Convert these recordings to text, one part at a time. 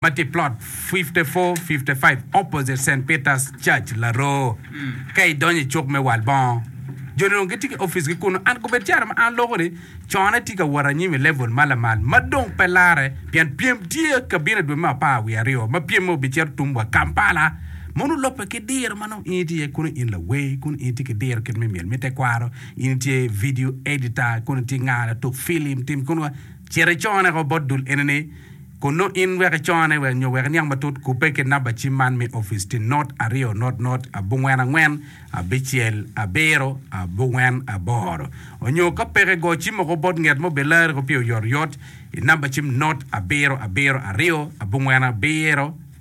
ma tye i Plot 5455 opposite Saint Peter's Church, Laroo. Ka idonyo i cuk me wal bongo, joni dong gitye ki oficgi kunnu. An kobed caro ma an loko ni, Con atye ka wot anyim i level ma lamal ma dong pe larre pien pyem tye ka bino i dwe me apar wiye aryo ma pyem meno obicito tum wa Kampala. Mono olobbe ki diro ma nongo in itye iye kunnu, in lawer kunnu, in itye ki diro kit me myel me tekwaro, in itye video editor kunnu, itye nga latuk filim, tim kunnu, cit icone ko bot dul enini. Kun nongo in wek icone wek nyo wek iniang matut, kubbe ki namba cim man me opic ti not aryo not not abongwen angwen abicel abiro abongwen aboro. Onyo ka peke go cim oko bot nget ma obilarri ko pi oyotoyot i namba cim not abiro abiro aryo abongwen abiro.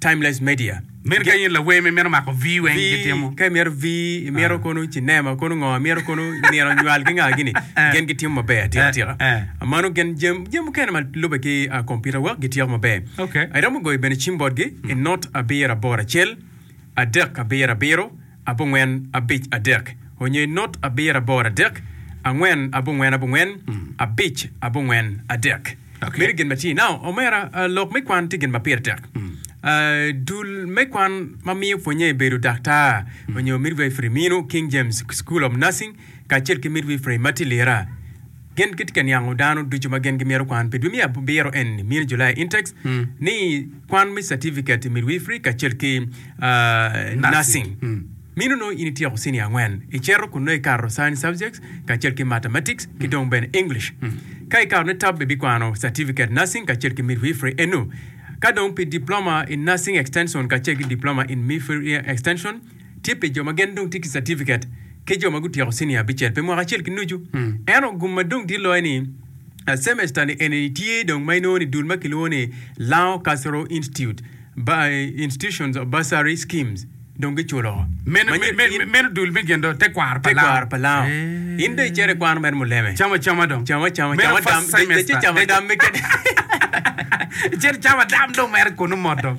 Timeless Media. Meno ka in lawer ma imito mako vii weng gitimo. Ka imito vii, imito kono cinema, kono ngo, imito kono nino nywal ki nga gini, gin gitimo maber atika tika. Mano gin jami mukene ma lube ki computer work gityeko maber. Iromo goyo bene cim botgi i not abiro aboro acel, adek abiro abiro, abongwen abic adek onyo i not abiro aboro adek angwen abongwen abongwen abic abongwen adek. Okay. Meno gin ma tye. Now, omera, ah, lok me kwan tye gin ma pire tek. Ah, dul me kwan ma miyo pwonye i bedo daktar onyo midwifery mino King James School of Nursing kacel ki midwifery ma tye lira. Gin gitye ka niango dano ducu ma gin gimito kwan pi dwe me abiro eni, Mini July Intakes, ni kwan me Certificate i Midwifery kacel ki Nursing. Mino nongo in ityeko Senior angwen, icito kun nongo ikato Science Subjects kacel ki Mathematics ki dong bene English. Ka ikato ne top ibikwano Certificate Nursing kacel ki Midwifery eno. Ka dong pi Diploma in Nursing Extension kacel ki Diploma in Midwifery Extension, tye pi jo ma gin dong tye ki catifiket ki jo ma gutyeko cinia abicel pi mwaka acel ki nucu. Ento gum ma dong tye loyo ni, cemester-ni eni tye dong ma inongo ni dul ma kilwongo ni Lao Cultural Institute Institutions of Bursary Schemes dong giculo. Meno dul me gendo tekwaro pa Lao. Tekwaro pa Lao. In dong icito ikwano mere muleme. Camo acama dong. Camo acama. Meno first semester. Camo dam keken. Icito icamo dam dong mere kunu mot dong.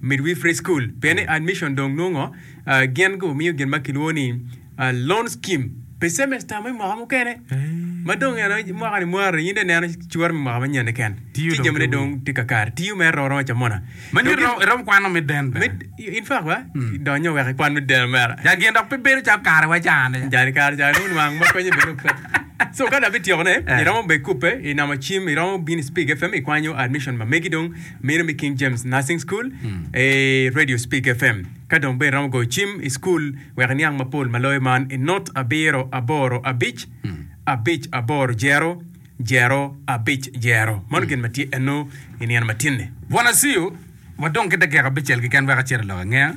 Midwifery School, pien ni admission dong nongo gin gumiyo gin ma kilwongo ni loan scheme pi semester me mwaka mukene ma dong en aye mwaka ni mware in dong ineno cwore me mwaka manyen keken ci jamine dong tye kakare tiyo mere romo romo camona Ma nyo irom- irom kwano me den bene. Med- in fact wa donyo wek ikwan me deno mera Ja gin dok pe bedo calo kare wa cani. jani kare ca nongo nwang ma konye bene ope so ka dok bityeko ne iromo bene kubbe inamo cim iromo bino i Spig FM ikwanyo admission ma megi dong Mino me King James Nursing School, e Radio Speak FM. Ka dong bene iromo goyo cim i cukul wek iniang mapol ma loyo man i not abiro aboro abic abic aboro jero jero abic jero. Mano gin ma tye eno i nino ma tinni. Bwana Siu, wadong ki dakika abicel keken wek acit i lok angeya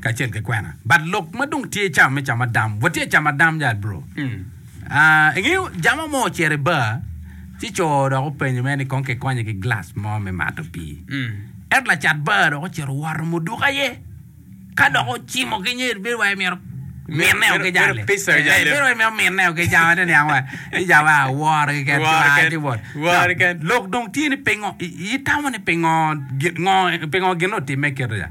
kacel ki kwena. But lok ma dong tye i cawa me camadam, watye i camadam yat bro. Ingeyo jami mo ocito i bar, ci co dok openyo mere ni kong kikonye ki gilac mo me mato pii. Ento lacat bar dok ocito owoto muduko aye. Ka dok ocimo ki nyer bedo wai myero minne o gijale. Bedo wai myero minne o gijale ni niang wa. Ija wa woro ki ken woro ki wot. Woro ken. Lok dong tye ni pingo itamo ni pingo pingo gin otimme kito ja.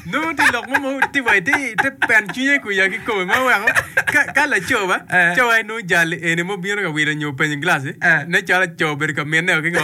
Nongo tye lok mo ma tye wa ite ite peno cwinye i kwiya kikome ma oweko ka ka laco ba Eh. co en nongo jali eni ma obino ka wilo nyo openyo gilaci Eh. ne cwalo co obedo ka minneo ki ngo.